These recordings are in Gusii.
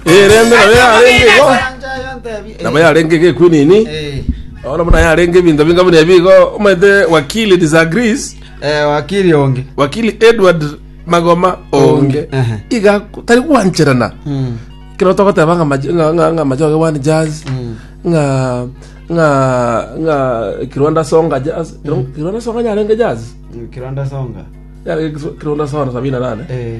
Erende nabo yarenge igo. Orancha ayo ntebi. Eh, Nabo yarenge igo ekwinini. eh, Ono muna yarenge ebinto binga buna ebigo. Omanyete wakili disagrees. eh, wakiri onge. Wakili Edward Magoma Onge. Ehe. Iga tari gwancherana. Mm, Kero togoteba nga maj- nga nga nga majoge one jazz. mm. Nga nga nga Kirwanda songa jazz. Kirwanda songa yarenge jazz. Kiranda songa. Yarenge Kirwanda songa 78. Eh.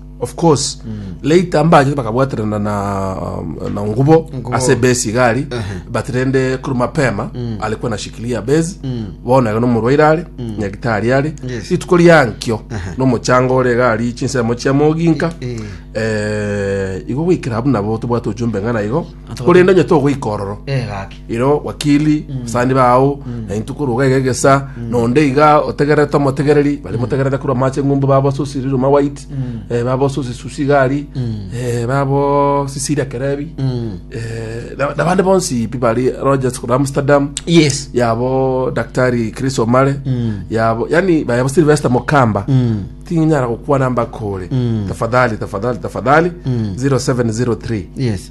Of course later mbachete bakabwaterana na na ngubo Ngubo. ase base igari but rende kuru mapema alikuwa na shikilia base bono ega nomorwaire are nyagitari are Yes. rituko riankio nomochanga ore egari chinsemo chia moginka Eh. eh, igo goikera abuna bo tobwate ojumbe ng'ana igo korende onye togoika ororo Eh, gaki. iro wakili, basani bao, na intwe korwa iga iga egesa, na onde iga otegererete omotegereri, bari motegererete korwa amache ng'umbu babo Susi Riruma White, eh, babo Susi Susi Gari, eh, babo Cecilia Kerebi, eh, na- na bande bonsi pi bari Rogers korwa Amsterdam, yes yabo daktari chris omare yabo yani bayabo silvester mokamba tinyara gokwana mbakore tafadhali tafadhali tafadhali 0703 yes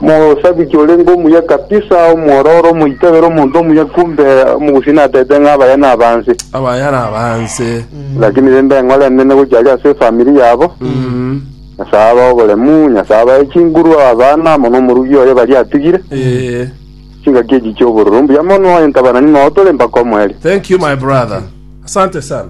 Mosabiki orenge omuya kabisa, omwororo, omoitebero, omonto omuya kumbe omogusii natete ng'a abaya nabanse. Abaya nabanse. Lakini rende eng'ora enene gochia aria ase efamiri yabo. Nyasae abae oboremu, Nyasae abae chinguru, abana, amo nomorugi oye baria atigire. Ee. Chingaki echi chi'obororo mbuya mono, entabana ning'o tore mpaka omoerio. Thank you my brother. Asante sana.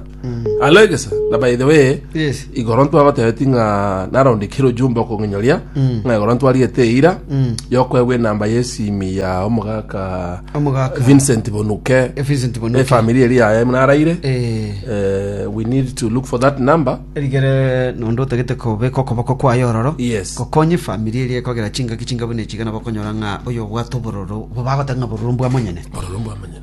Aloegesa na by the way Yes. igoro ntwagotebeti ng'a narondekire ojumbe okong'enyoria Mm. ng'a igoro ntwarigete eira Mm. yokwegwa enamba yesimi ya omogaka Omogaka. Vincent Bonuke Eh, Vincent Bonuke. efamili eri yaye munaraire Eh, Eh, we need to look for that number erigere nondo otagete kobeka okoboko kwaye ororo Yes. gokonye famiri eria ekogera chingaki chinga buna echiga nabo okonyora ng'a oyo obwate obororo bo bagoteba ng'a bororo mbwamonyene ororo mbwamanyene